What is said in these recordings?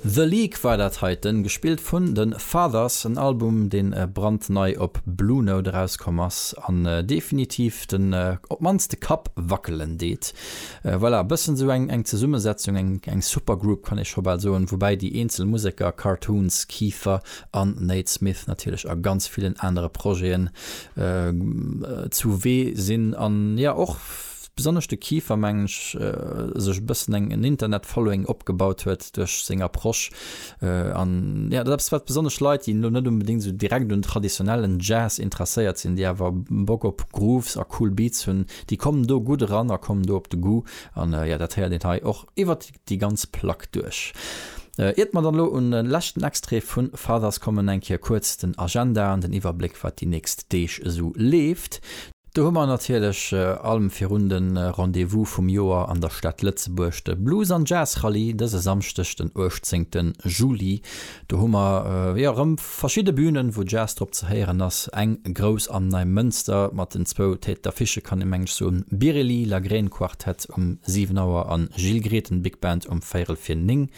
The League war dat heiten, gespillt vun de Fathers, en Album deen brandnei op Blue Note erauskomm ass an definitiv den op mannst de Kapp wackelen deet. Voilà, e bëssen esou eng Zesummesetzung, eng Supergroup kann ee scho bal soen, woubäi déi eenzel Museker, Cartoons, Kieffer an Nate Smith natierlech a ganz villen anere Projeten zu wee sinn an jo och besonnesch de Kieffer, mengen ech, sech e bëssen eng en Internet-Following opgebaut huet duerch seng Approche. An jo, dat ass eppes, wat besonnesch Leit, déi elo net onbedéngt esou direkt un traditionellen Jazz interesséiert sinn, déi awer Bock op Grooves a cool Beats hunn, déi kommen do gutt eran a kommen do op de Goût. An jo, dat héiert een hei och iwwert déi ganz Plack duerch. Iert mer dann elo un de leschten Extrait vun Fathers kommen, eng Kéier kuerz den Agenda an den Iwwerbléck, wat déi nächst Deeg esou leeft. Do hu mer natierlech allem virun de Rendez-vous vum Joer an der Stad Lëtzebuerg, de Blues an Jazz Rallye dëse Samschdeg, den 18 Juli. Do hu mer, jo, erëm. Verschidde Bünen, wou Jazz drop ze héieren ass, eng grouss am Neimënster mat den zwou Tête d'affichë kann ee menges soen, Biréli Lagrène Quartet um 7 Auer an Gilles Grethen Big Band um véirel vir 9.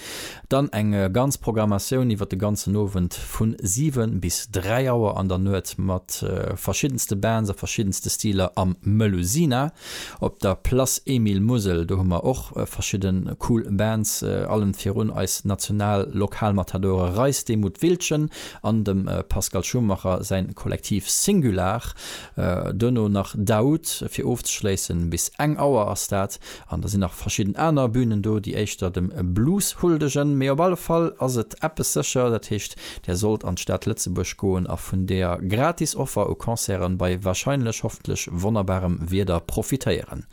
Dann eng ganz Programmatioun iwwer de ganzen Owend vu 7 bis 3 Auer an der Nuet mat verschiddenste Bands a verschiddenste Stiler am Melusina. Op der Place Emile Musel, do hu mer och verschidde cool Bands, allen virun eis national Lokalmatadore Reis, de Mut Wildchen an dem Pascal Schumacher säin Kollektiv Singular. Duerno nach Daoud fir ofzeschléissen, bis eng Auer ass dat. An da sinn nach verschidden aner Bünen do, déi éischter dem Blues huldegen, mee op alle Fall ass et eppes sécher, dat heescht Där sollt an d'Stad Lëtzebuerg goen a vun der gratis Offer u Concerten bei wahrscheinlech, hoffentlech wonnerbarem Wieder profitéieren.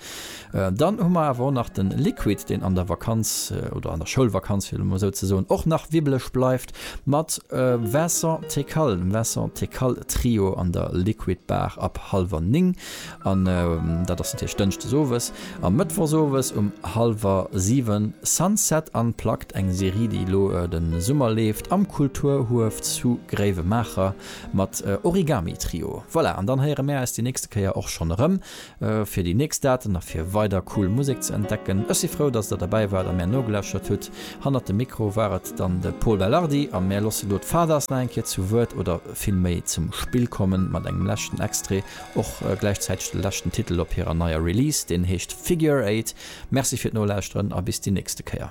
Dann hu mer awer och nach den Liquid, deen an der Vakanz, oder an der Schoulvakanz fir emol esou ze soen, och nach wibbeleg bleift mat Vincent Tekal, dem Vincent Tekal Trio an der Liquid Bar ab halwer 9. An dat ass natierlech Dënschdes owes a Mëttwochs owes um hallwer siwen Sunset Unplugged, eng Serie, déi elo de Summer leeft am Kulturhuef zu Gréiwemaacher mat Origami Trio. Voilà, an dann héiere mär äis déi nächste Kéier och schonn erëm fir déi nächst Daten a fir weider cool Musek ze entdecken. Ech si frou, datt Der derbäi waart a mär nogelauschtert hutt. Hannert dem Mikro war et dann de Pol Belardi a mär loosse elo d'Fathers nach eng Kéier zu Wuert, oder vill méi zum Spill kommen, mat engem leschten Extrait. Och gläichzäiteg de leschten Titel op hirer neier Release, deen heescht Figure Eight. Merci fir d'Nolauschteren a bis déi nächste Kéier.